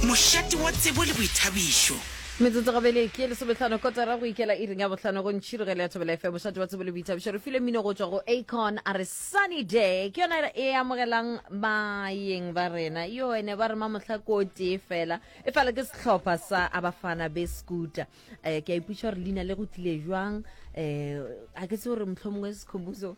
Mošate wa tsebo le boithabišo. Metsotso go bele ke ye lesometlhano kotara go ikela iring ya bohlano go ntšhirogelo ya thobela fm mošate wa tsebo le boithabišo re file mmino go tšwa go acon a re sunny day ke yona e amogelang bayeng ba rena yo ene ba re mamohla ko tee fela e fela ke sehlopha sa abafana be scooter um ke a ipuša gore leina le go tlile jwang um a ke se gore mohlho mongwe sekhobuso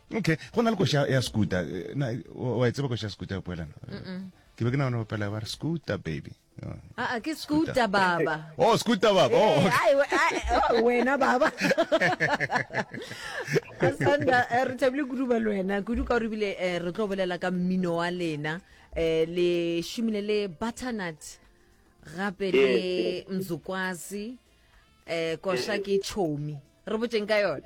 Okay, go na le koša ya scooter. Eh, na wa e tseba koša ya scooter ya poelana? Ke be ke nagana go pela ba re scooter baby. Oh. Ah, ah, ke scooter baba. Oh, scooter baba. Oh, okay. Oh, wena baba. Asanda eh, re thabile kudu ba lwena. Kudu ka re bile eh, re tlo bolela ka mmino wa lena le shumile le butternut gape le mzukwasi eh kosha ke chomi re botseng ka yona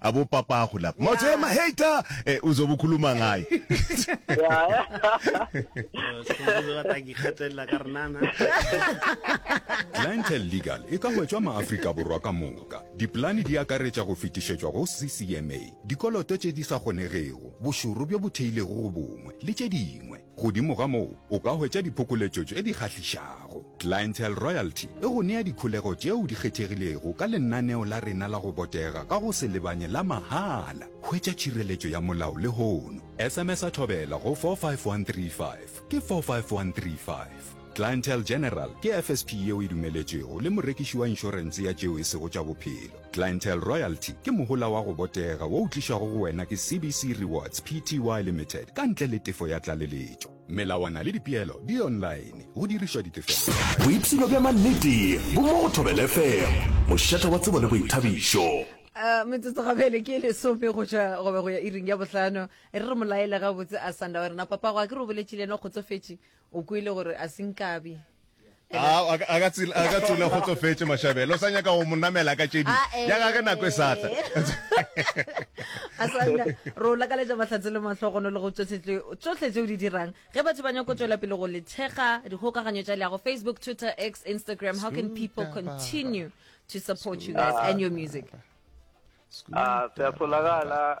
a bo papago la motho e mahater e eh, uzo bukhuluma ngaye Clientele Legal e ka hwetšwa maafrika borwa ka moka dipolane di akaretša go fetišetšwa go ccma dikoloto tše di sa kgonegego bošoro bjo bo theilego go bongwe le tše dingwe Godimo ga moo, o ka hwetša diphokoletšo tše di kgahlišago. Clientele Royalty e go nea dikholego tšeo di kgethegilego ka lenaneo la rena la go botega ka go se lebanye la mahala. Hwetša tšhireletšo ya molao lehono. SMS-a Thobela go 45135, ke 45135. Clientele General ke FSP yeo e dumeletšwego le morekiši wa inšorense ya tšeo e sego tša bophelo. Clientele Royalty ke mohola wa go botega wo o tlišwago go wena ke CBC Rewards Pty Limited ka ntle le tefo ya tlaleletšo. Melawana le dipeelo di online, go dirišwa ditefelo tša kgatišo. Boipshino bja mannete bo mo go Thobela FM, mošate wa tsebo le boithabišo. Metsotso gabele ke lesome go tšwa gobe go ya iring ya bohlano. E re re mo laele gabotse a sanda gore na papago a ke re o boletše le yena o kgotsofetše o kwele gore a se nkabe a ka tsula go tlofetse mashabelo o sa nyaka go mo namela ka tšedi ah, eh. ya gage nako e satla asanda ro lakaletša mahlatse le mahlogono le go tsohle tse o di dirang ge batho ba nyako tswela pele go le thekga dikgokaganyo tša leago facebook twitter x instagram how can people continue to support you guys and your music a ah, se a solagala